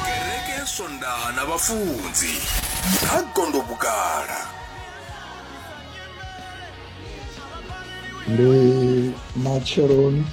kereke ya swondaha na vhafunzi ha gondo vhukala ndi matsheloni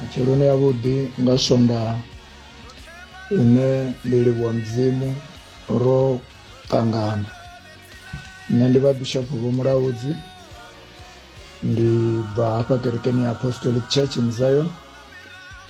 matsheloni yavhuḓi nga swondaha ine ndi livhuwa mudzimu ro ṱangana nṋe ndi vha bishop vho mulaudzi ndi bva hafha kerekeni ya apostolic church in zion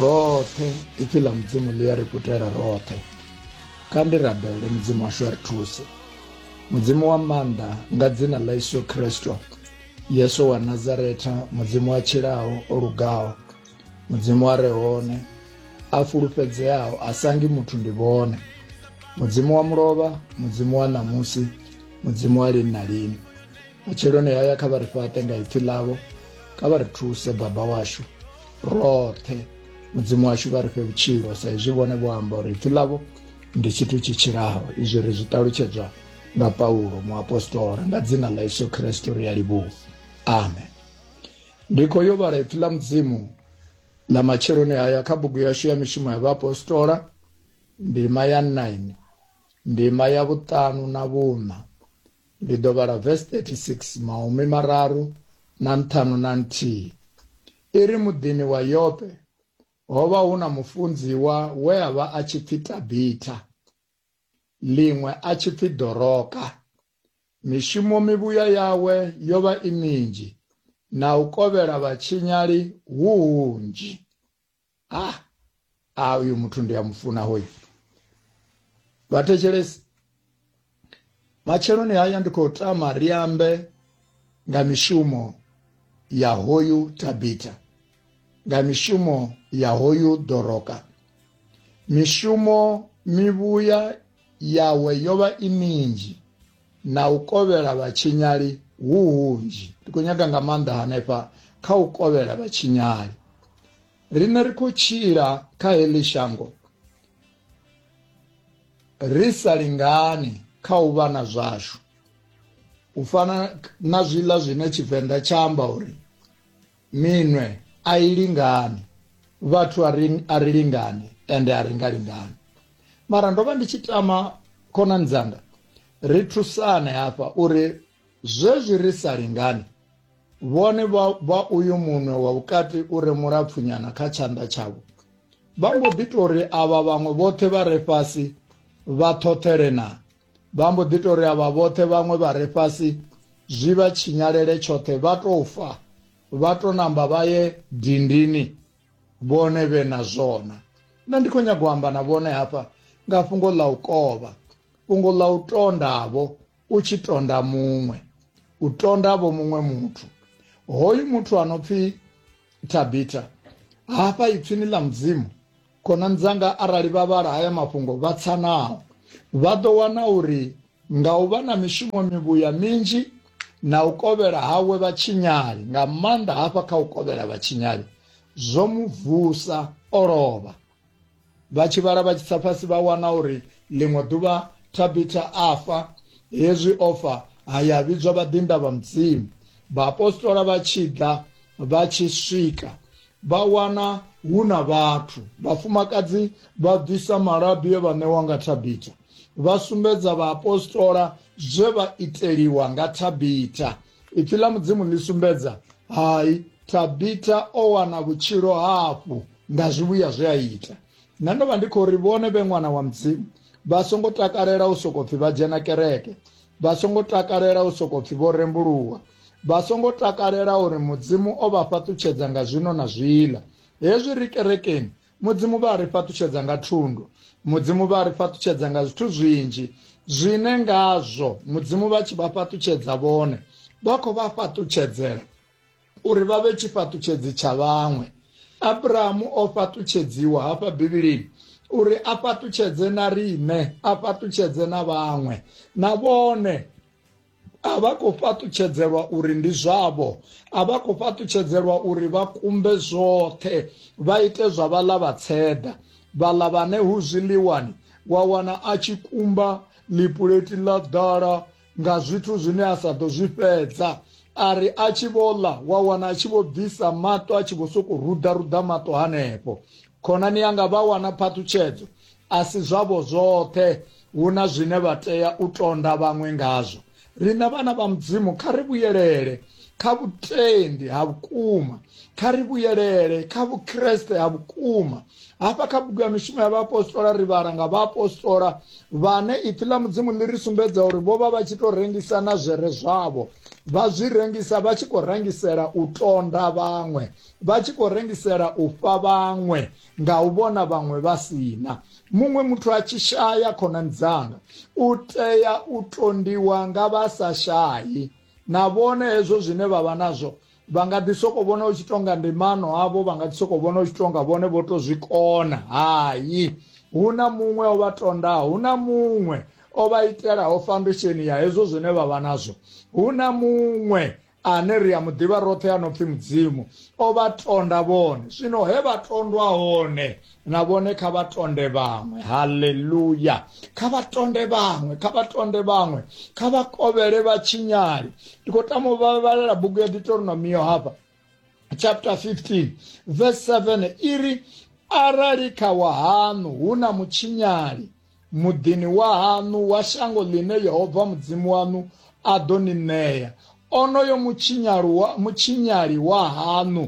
roṱhe ipfi ḽa mudzimu ḽi ya ri kutela roṱhe kha ndi rabele mudzimu washu a ri thuse mudzimu wa maanḓa nga dzina ḽa yesu kristo yesu wa nazaretha mudzimu wa tshilaho o lugaho mudzimu a re hone a fulufhedzeaho a sangi muthu ndi vhone mudzimu wa mulovha mudzimu wa ṋamusi mudzimu wa lini na lini matsheloni haya kha vha ri fhaṱe nga ipfi ḽavho kha vha ri thuse baba washu roṱhe mudzimu washu vha ri fhe vhutshilo sa izwi vhone vho amba uri ipfi ḽavho ndi tshithu tshi tshilaho izwi ri zwi ṱalutshedzwa nga paulo muapostola nga dzina ḽa yesu khristo ri a livhuwa amen ndi khou yo vhala ipfi ḽa mudzimu ḽa matsheloni haya kha bugu yashu ya mishumo ya vhaapostola ndima ya 9 ndima ya vhuṱanu na vhuṋa Ndi ḓo vhala vesi 36 mahumi mararu na nṱhanu na nthihi. I ri, Muḓini wa Yope ho vha hu na mufunziwa we a vha a tshi pfi Tabitha, ḽiṅwe a tshi pfi Doroka. Mishumo mivhuya yawe yo vha i minzhi, na u kovhela vhatshinyali hu hunzhi. ah ah uyu muthu ndi a mufuna hoyu vhathetshelesi matsheloni haya ndi khou tama ri ambe nga mishumo ya hoyu tabita nga mishumo ya hoyu doroka mishumo mivhuya yawe yo vha i minzhi na u kovhela vhatshinyali hu hunzhi. Ndi khou nyaga nga maanḓa hanefha kha u kovhela vhatshinyali. Riṋe ri khou tshila kha heḽi shango ri sa lingani kha u vha na zwashu, u fana na zwiḽa zwine Tshivenḓa tsha amba uri. Minwe a i lingani, vhathu a ri, a ri lingani ende a ri nga lingani. Mara ndo vha ndi tshi tama khonani dzanga ri thusane hafha uri zwezwi ri sa lingani, vhone vha, vha uyu munwe wa vhukati u re mulapfunyana kha tshanḓa tshavho, vha mbo ḓi tou ri avha vhaṅwe vhoṱhe vha re fhasi vha ṱhoṱhele na Vha mbo ḓi tou ri avha vhoṱhe vhaṅwe vha re fhasi zwi vha tshinyalele tshoṱhe vha tou fa vha tou namba vha ye dindini vhone vhe na zwona. Nṋe ndi khou nyaga u amba na vhone hafha nga fhungo ḽa u kovha, fhungo ḽa u tondavho u tshi tonda muṅwe, u tondavho muṅwe muthu. Hoyu muthu a no pfi Tabita hafha ipfini ḽa mudzimu Khonani dzanga arali vha vhala haya mafhungo vha tsa nao, vha ḓo wana uri nga u vha na mishumo mivhuya minzhi na u kovhela hawe vhatshinyali, nga maanḓa hafha kha u kovhela vhatshinyali, zwo mu vusa o lovha. Vha tshi vhala vha tshi tsa fhasi vha wana uri ḽiṅwe ḓuvha Thabitha a fa, hezwi o fa ha ya vhidzwa vhaḓinḓa vha Mudzimu. Vhaapostola vha tshi ḓa vha tshi swika Vha wana hu na vhathu. Vhafumakadzi vha bvisa malabi e vha ṋewa nga Thabitha. Vha sumbedza vhaapostola zwe vha iteliwa nga Thabitha. Ipfi ḽa Mudzimu ḽi sumbedza, Hai, Thabitha o wana vhutshilo hafhu nga zwivhuya zwe a ita. Nṋe ndo vha ndi khou ri vhone vhe ṅwana wa Mudzimu vha songo takalela u sokou pfi vha dzhena kereke, vha songo takalela u sokou pfi vho rembuluwa, vha songo takalela uri Mudzimu o vha fhaṱutshedza nga zwino na zwiḽa. Hezwi ri kerekeni, Mudzimu vha a ri fhaṱutshedza nga thundu. Mudzimu vha a ri fhaṱutshedza nga zwithu zwinzhi zwine ngazwo Mudzimu vha tshi vha fhaṱutshedza vhone, vha khou vha fhaṱutshedzela uri vha vhe tshifhaṱutshedzi tsha vhaṅwe. Abrahamu o fhaṱutshedziwa hafha Bivhilini uri a fhaṱutshedze na riṋe, a fhaṱutshedze na vhaṅwe, na vhone a vha khou fhaṱutshedzelwa uri ndi zwavho a vha khou fhaṱutshedzelwa uri vha kumbe zwoṱhe vha ite zwa vhaḽa vha tseḓa vhaḽa vhane hu zwiḽiwani wa wana a tshi kumba ḽipuleti ḽa ḓala nga zwithu zwine a sa ḓo zwi fhedza a ri a tshi vho ḽa wa wana a tshi vho bvisa maṱo a tshi vho sokou ruḓaruḓa maṱo hanefho khonani yanga vha wana phaṱhutshedzo A si zwavho zwoṱhe, hu na zwine vha tea u tonda vhaṅwe ngazwo. Riṋe vhana vha Mudzimu kha ri vhuyelele kha vhutendi ha vhukuma, kha ri vhuyelele kha Vhukriste ha vhukuma. Hafha kha bugu ya Mishumo ya Vhaapostola ri vhala nga vhaapostola vhane Ipfi ḽa Mudzimu ḽi ri sumbedza uri vho vha vha tshi tou rengisa na zwere zwavho, vha zwi rengisa vha tshi khou rengisela u tonda vhaṅwe, vha tshi khou rengisela u fha vhaṅwe. nga u vhona vhaṅwe vha sina muṅwe muthu a tshi shaya khonani dzanga u tea u tondiwa nga vha sa shayi na vhone hezwo zwine vha vha nazwo vha nga ḓi soko vhona u tshi tonga ndimano avho vha nga ḓi soko vhona u tshi tonga vhone vho to zwi kona hayi hu na muṅwe o vha tondaho hu na muṅwe o vha itelaho foundation ya hezwo zwine vha vha nazwo hu na muṅwe ane ri a mu ḓivha roṱhe a no pfi mudzimu o vha tonda vhone zwino he vha tondwa hone na vhone kha vha tonde vhaṅwe haleluya kha vha tonde vhaṅwe kha vha tonde vhaṅwe kha vha kovhele vha tshinyali ndi khou tama u vhavhalela bugu ya deuteronomiyo hafha chapter 15 verse 7 iri arali kha wahaṋu hu na mutshinyali muḓini wa haṋu wa shango ḽine Yehova Mudzimu waṋu a ḓo ni ṋea onoyo mutshinyali wa haṋu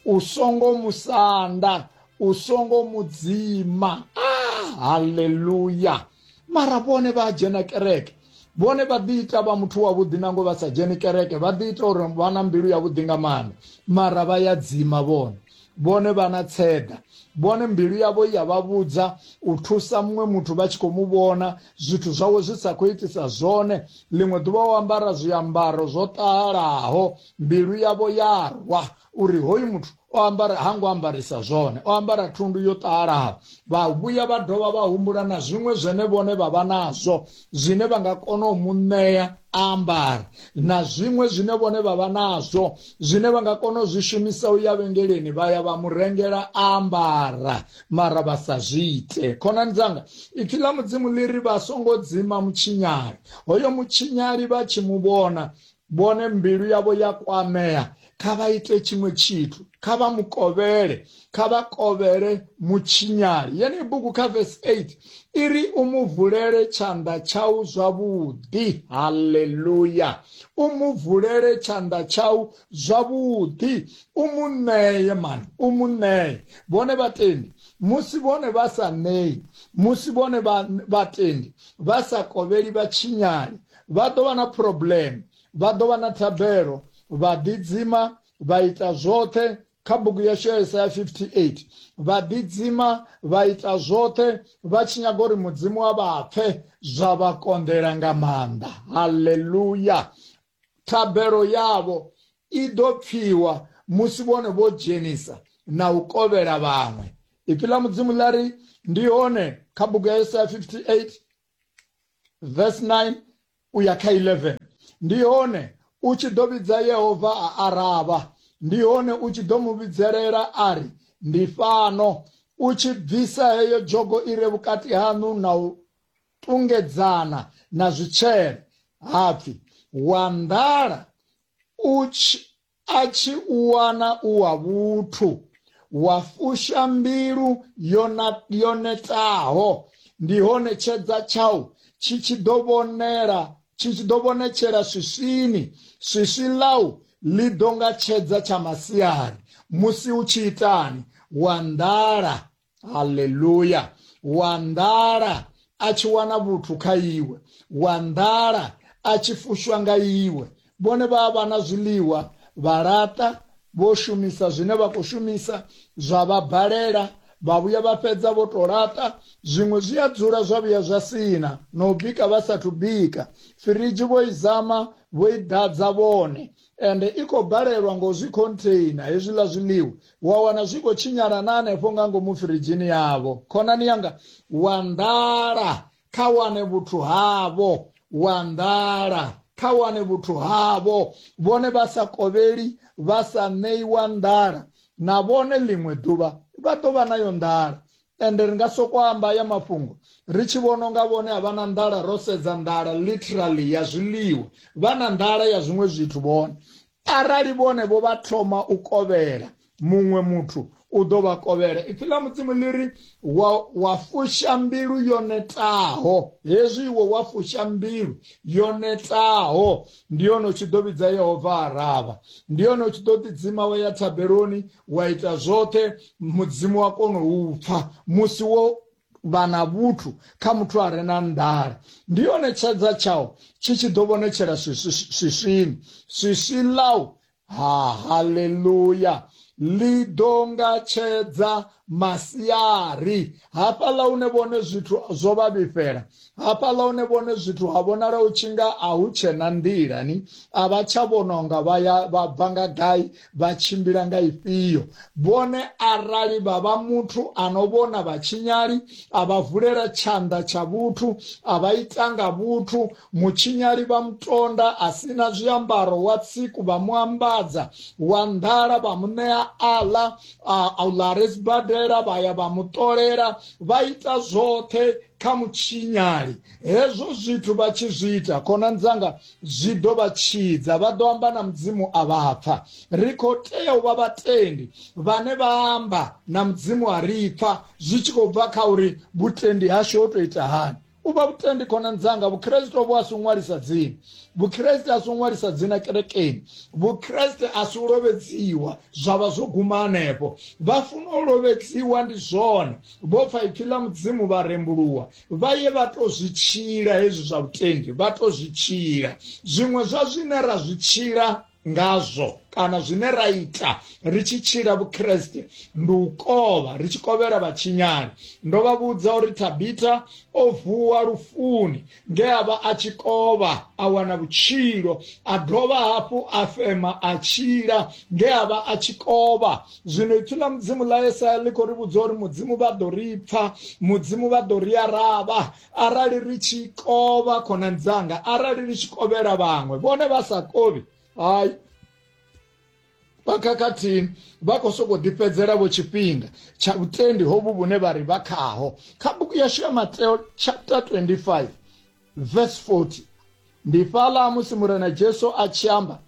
u songo musanda u songo mudzima ah, haleluya mara vhone vha dzhena kereke vhone vha ḓi ita vha muthu wavhuḓi nango vha sa dzheni kereke vha ḓi ita uri vha na mbilu yavhuḓi nga maanḓa mara vha ya dzima vhone vhone vha na tseda vhone mbilu yavho ya vha vhudza u thusa muṅwe muthu vha tshi khou mu vhona zwithu zwawe zwi sa khou itisa zwone ḽiṅwe ḓuvha o ambara zwiambaro zwo ṱahalaho mbilu yavho ya rwa uri hoyu muthu o ambara ha ngo ambarisa zwone o ambara thundu yo ṱalaho vha vhuya vha dovha vha humbula na zwiṅwe zwene vhone vha vha nazwo zwine vha nga kona u mu ṋea ambara na zwiṅwe zwine vhone vha vha nazwo zwine vha nga kona u zwi shumisa u ya vhengeleni vha ya vha mu rengela ambara mara vha sa zwi ite khonani dzanga ipfi ḽa mudzimu ḽi ri vha songo dzima mutshinyali hoyo mutshinyali vha tshi mu vhona vhone mbilu yavho ya kwamea kha vha ite tshiṅwe tshithu kha vha mu kovhele kha vha kovhele mutshinyali yeneyi bugu kha vesi 8 i ri u mu vulele tshanḓa tshau zwavhuḓi halleluya u mu vulele tshanḓa tshau zwavhuḓi u mu ṋeye mani u mu ṋeye vhone vhatendi musi vhone vha sa ṋeyi musi vhone vhatendi vha sa kovheli vhatshinyali Vha ḓo vha na phurobleme, vha ḓo vha na thabelo, vha ḓidzima, vha ita zwoṱhe kha bugu yashu ya Yesaya 58 vha ḓidzima vha ita zwoṱhe vha tshi nyaga uri mudzimu wa vha pfe zwa vha konḓela nga maanḓa haleluya thabelo yavho i ḓo pfiwa musi vhone vho dzhenisa na u kovhela vhaṅwe ipi ḽa mudzimu ḽa ri ndi hone kha bugu ya yesaya 58 verse 9 u ya kha 11 ndi hone u tshi ḓo vhidza yehova a aravha ndi hone u tshi ḓo mu vhidzelela a ri ndi fhano u tshi bvisa heyo dzhogo i re vhukati haṋu na u tungedzana na zwitshele hapfi wa nḓala u tshi A tshi u wana u wa vhuthu, wa fusha mbilu yo na, yo netaho, ndi hone tshedza tshau tshi tshi ḓo vhonela tshi tshi ḓo vhonetshela swiswini, swiswi ḽau ḽi ḓo nga tshedza tsha masiari musi hu tshi itani? Wa nḓala. haleluya wa nḓala a tshi wana vhuthu kha iwe wa nḓala a tshi fushwa nga iwe vhone vha vha na zwiḽiwa vha laṱa vho shumisa zwine vha khou shumisa zwa vha balela vha vhuya vha fhedza vho to laṱa zwiṅwe zwi a dzula zwa vhuya zwa sina na u bika vha sathu bika firidzhi vho i zama vho i ḓadza vhone ende i khou balelwa ngo zwi khontheina hezwiḽa zwiḽiwa, wa wana zwi khou tshinyala na hanefho nga ngomu firidzhini yavho. Khonani yanga, wa nḓala, kha wane vhuthu havho, wa nḓala, kha wane vhuthu havho. Vhone vha sa kovheli, vha sa ṋeiwa nḓala, na vhone ḽiṅwe ḓuvha vha ḓo vha nayo nḓala. ende ri nga soko amba haya mafhungo ri tshi vhona unga vhone a vha na nḓala ro sedza nḓala literally ya zwiḽiwa vha na nḓala ya zwiṅwe zwithu vhone arali vhone vho vha thoma u kovhela muṅwe muthu u ḓo vha kovhela ipfi ḽa mudzimu ḽi ri wa, wa fusha mbilu yo netaho hezwi iwe wa fusha mbilu yo netaho ndi yone u tshi ḓo vhidza yehova aravha ndi yone u tshi ḓo ḓidzima wa ya thabeloni wa ita zwoṱhe mudzimu wa kona u pfa musi wo vha na vhuthu kha muthu a re na nḓala ndi yone tshedza tshao tshi tshi ḓo vhonetshela swiswini swiswi ḽau ha haleluya ḽi ḓo nga tshedza masiari hafhaḽa hune vhone zwithu zwo vha vhifhela hafhaḽa hune vhone zwithu ha vhonala u tshi nga a hu tshena nḓilani a vha tsha vhona unga vha bva nga gai Vha tshimbila nga ifhio vhone arali vha vha muthu a no vhona vhatshinyali, a vha vulela tshanḓa tsha vhuthu, a vha ita nga vhuthu? Mutshinyali vha mu tonda, a si na zwiambaro, wa tsiku vha mu ambadza, wa nḓala vha mu ṋea a ḽa, a u ḽa a re sibadela vha ya vha mu ṱolela, vha ita zwoṱhe kha mutshinyali. Hezwo zwithu vha tshi zwi ita, khonani dzanga, zwi ḓo vha tshidza vha ḓo amba na mudzimu a vha pfa ri khou tea u vha vhatendi vhane vha amba na mudzimu a ri pfa zwi tshi khou bva kha uri vhutendi hashu ho tou ita hani u vha vhutendi khonani dzanga vhukreste vhu a si ṅwalisa dzina vhukreste a si ṅwalisa dzina kerekeni vhukreste a si u lovhedziwa zwa vha zwo guma hanefho vha funa u lovhedziwa ndi zwone vho pfa ipfi ḽa mudzimu vha rembuluwa vha ye vha to zwi tshila hezwi zwa vhutendi vha to zwi tshila zwiṅwe zwa zwine ra zwi tshila ngazwo kana zwine ra ita ri tshi tshila vhukreste ndi u kovha ri tshi kovhela vhatshinyani ndo vha vhudza uri tabita o vuwa lufuni nge a vha a tshi kovha a wana vhutshilo a dovha hafhu a fema a tshila nge a vha a tshi kovha zwino ipfi ḽa mudzimu ḽa yesaya ḽi khou ri vhudza uri mudzimu vha ḓo ri pfa mudzimu vha ḓo ri aravha arali ri tshi kovha khonani dzanga arali ri tshi kovhela vhaṅwe vhone vha sa kovhi hayi vha khakhathini vha khou sokou ḓifhedzela vho tshifhinga tsha vhutendi hovhu vhune vha ri vha khaho kha buku yashu ya mateo chapter 25 verse 40 ndi fhaḽa musi murena jesu a tshi amba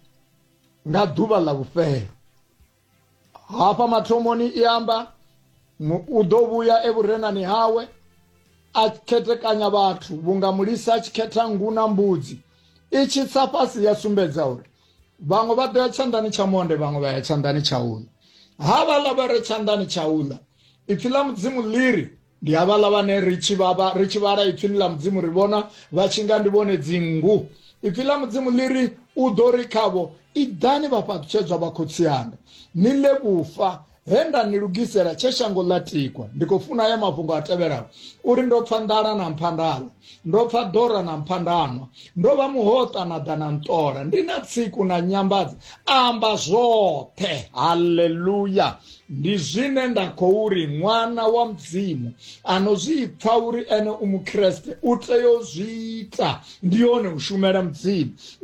nga ḓuvha ḽa vhufhelo hafha mathomoni i amba u ḓo vhuya evhurenani hawe a khetekanya vhathu vhunga mulisa a tshi khetha ngu na mbudzi i tshi tsa fhasi ya sumbedza uri vhaṅwe vha ḓo ya tshanḓani tsha monde vhaṅwe vha ya tshanḓani tsha uḽa ha vhaḽa vha re tshanḓani tsha uḽa ipfi ḽa mudzimu ḽi ri ndi havhaḽa vhane ri tshi vhavha ri tshi vhala ipfini ḽa mudzimu ri vhona vha tshi nga ndi vhone dzinngu ipfi ḽa mudzimu ḽi ri u ḓo ri khavho iḓani vhafhaṱutshedzwa vha khotsi anga ni ḽe vhufa he nda ni lugisela tshe shango ḽa tikwa ndi khou funa ya mafhungo a tevhelaho uri ndo pfa nḓala na mphandala ndo pfa dora na mphandanwa ndo vha muhoṱa na ḓa na nṱola ndi na tsiku na nyambadza amba zwoṱhe haleluya ndi zwine nda khou ri ṅwana wa mudzimu ano zwi pfa uri ene u mukreste u tea u zwi ita ndi hone u shumela mudzimu